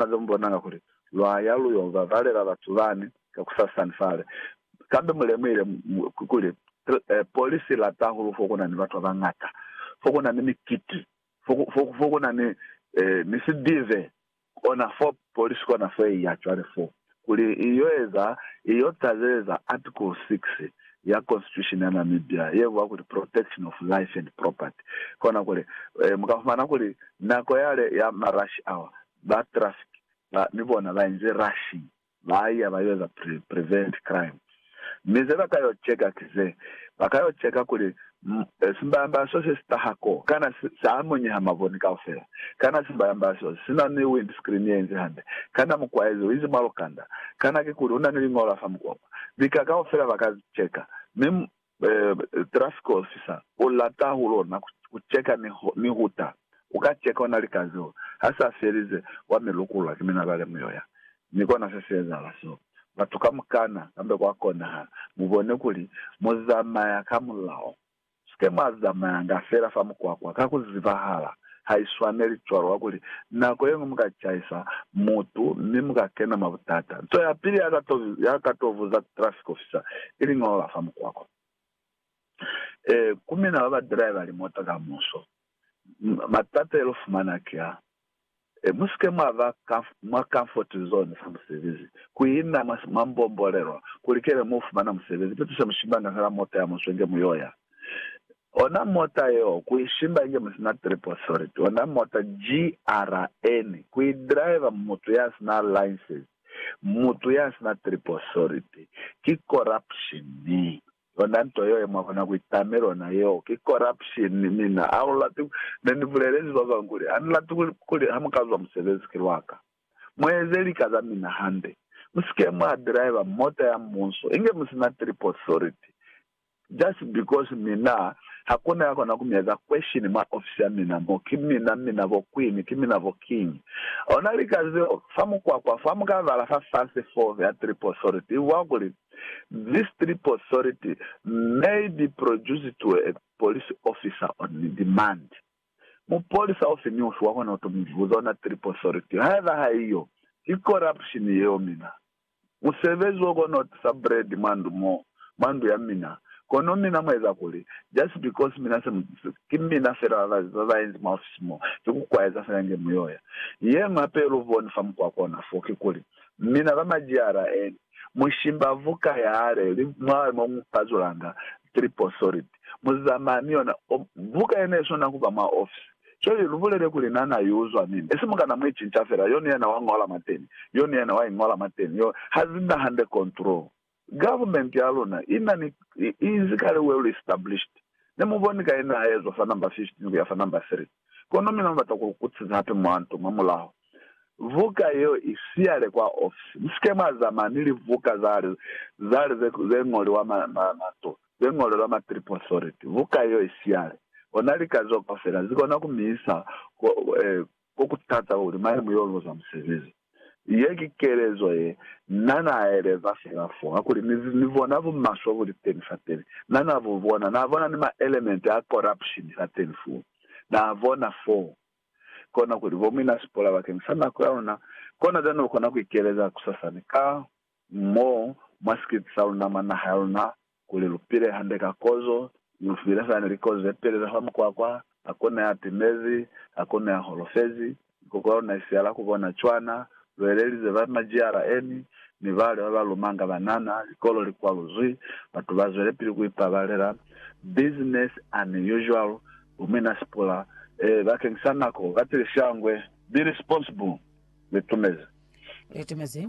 Ba be mu bonanga kuli, Lwa ya lu yo babalela batu bani kakusasani fale. Kambe mu lemuhile kuli polisi i lata hahulu fo ku na ni batu ba bañata, fo ku na ni mikiti, fo ku na ni sidive. Kona fo polisi kona fo i ya cwale foo. Kuli i yo eza, i yo tazeza Article 6 ya Constitution ya Namibia ye bua kuli Protection of Life and Property. Kona kuli, mu ka fumana kuli nako yale ya ma rush hour, ba traffic ba, ni bona ba inze rushing, ba iya ba yo eza prevent crime. Mi ze ba ka yo ceka ki ze, ba ka yo ceka kuli, Simbamba so se si taha ko, kana sa amunyeha maboni kaufela? Kana simbamba so si na ni windscreen ye inzi hande? Kana mukwaezi u inzi mwa lukanda? Kana kikuli u na ni liñolo la fa mukwakwa? Lika kaufela ba ka ceka. Mi traffic officer u lata hahulu ona ku ceka ni huta. U ka ceka ona lika zeo. Ha sa felize, wa mi lukulula ki minabale mu yo ya. Mi kona se si ezahala seo. batu kamukana, kambe kwa konahala mu bone kuli mu zamaya ka mulao. Sike mwa zamayanga fela fa mukwakwa ka ku zibahala. Ha i swaneli cwalo, kakuli nako ye ñwi mu ka caisa mutu mi mu ka kena mwa butata. Nto ya pili ya ka to, ya ka to buza ku traffic officer, i liñolo la fa mukwakwa. Ee, ku mina ba ba driver limoto ka muso. Matata ye lu fumana ki a, Mu si ke mwa ba mwa comfort zone sa musebezi, ku ina mwa mwa mbombolelwa, ku likeni mu fumana musebezi. Pitu se mu shimbanga fela mota ya muswe inge mu yo ya. Ona mota yeo, ku i shimba inge mu si na trip authority. Ona mota, GRN, ku i driver mutu ya si na license, mutu ya si na trip authority, ki corruption. Yona nto yeo ye mwa kona ku itame lona yeo ki corruption. Mina ha u lati ku, ne ni bulelezi ba bañwi kuli, ha ni lati kuli, kuli ha mu ka zwa musebezi ki lwa ka. Mu eze lika za mina hande. Mu si ke mwa driver mota ya Mubuso inge mu si na trip authority, just because mina ha ku na ya kona ku mi eza question mwa ofisi ya mina mo. Ki mina, mina bo Queen, ki mina bo King. Ona lika zeo, fa mukwakwa fo, ha mu ka bala fa fase foo ya trip authority, i bwa kuli, This trip authority may be produced to a police officer on demand. Mupolisa ofi ni ofi wakona kuto mibuza ona trip authority. Haiba haiyo, ki corruption yeo mina. Musebezi wo kona kutisa bread mwa ndu mo, mwa ndu ya mina, kono mina mueza kuli, just because mina se mutisi, ki mina fela ba baenzi mwa ofisi mo, ki kukwaeza fela nge muyoya. Yeñwi hape yeluboni fa mukwako ona fo, kikuli, mina ba majiyara eni. Mushimbavu ka yale li mwa mo mu pazulanga triple solid. Mu zamaya ni yona. O, buka yena i swana ku ba mwa ofisi. Cwale lu bulele kuli na na i uzwa nini. Esi mu kana mu i cinca fela, yo ni yena wa ñola mwateni, yo ni yena wa i ñola mwateni, yo. Ha zi na hande control. Government ya luna i na ni, i, i inzi kale well established. Ne mu boni ka yena ha ezwa fa number 15 ku ya fa number 3. Kono mina mubata kulukutisa hape mwa nto mwa mulaho. Vuka yeo i siyale kwa ofisi. Musike mwa zamana ni livuka zale, zale ze, ze ñoliwa ma, ma, mato, ze ñolelwa ma trip authority. Vuka yeo i siyale. Ona lika zeo kaufela zikona ku mi isa ko, eh, ko ku tata kuli mane mu yo luza musebezi. Ye ki kelezo ye Na n'a eleza fela fo, ha kuli, Ni, ni bona bumaswe bu li teni fateni. Na, Na bu bona. Na bona ni maelementi a corruption fateni foo. Na bona foo. Kona kuli, Bo, mi na sipola bakeng sa nako ya luna. Kona bjani u kona ku ikeleza kusasani ka, mo mwa sikiti sa luna mwa naha ya luna, kuli lu pile hande ka kozo, mi lu file fani likozo ye pelela fa mukwakwa, hakuna ya timezi, hakuna ya holofezi, mikoko ya luna i siala ku bona cwana, lu elelize ba majiyara eni, mi bale ba ba lumanga banana, likolo li kwaluzwi, batu ba zwelepili ku ipabalela, business an usual, bu mina sipula, eh, bakeng sa nako, ba tile shangwe, be responsible, li tumezi. Li tumezi.